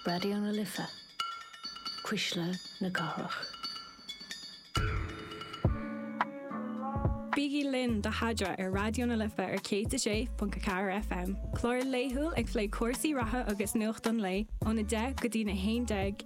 Raidió na Life, Cuisle na Cathrach. Bígí linn do Fada ar Raidió na Life ar 106.4 FM, clár laethúil ag plé cúrsaí reatha agus nuacht an lae óna 10 go dtí na 11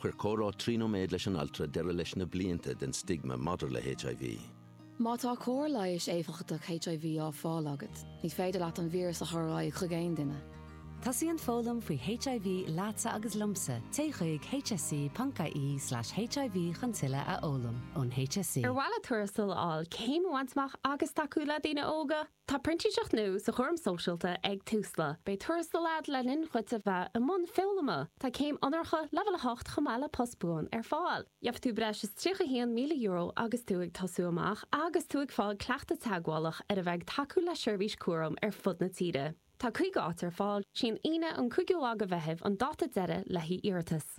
Chuir comhrá trí nóiméad leis an altra deireadh leis na blianta den stigma maidir le HIV. Má tá cóir leighis éifeachtach HIV á fáil agat, ní féidir leat an víreas a chur ar aghaidh chuig aon duine. Tosaíonn foghlaim faoi HIV leatsa agus liomsa, téigh chuig hse.ie/hiv chun tuilleadh a fhoghlaim ón HSE. Ar mhaith leat tuarastal a fháil, céim a bhaint amach agus tacú le daoine óga? Tá printíseacht nua sa chúram sóisialta ag Tusla. Beidh tuarastal agat le linn dhuit a bheith i mbun foghlama. Tá céim onóracha, leibhéal 8, chomh maith le post buan ar fáil. Gheobhaidh tú breis is €31,000 agus tú ag tosú amach agus tú ag fáil cleachtadh teagmhálach ar a bheith ag tacú le seirbhís cúraim ar fud na tíre. Tá 50 áit ar fáil. Is í an Aoine an 5ú lá de Mheitheamh an dáta deiridh le hiarratais.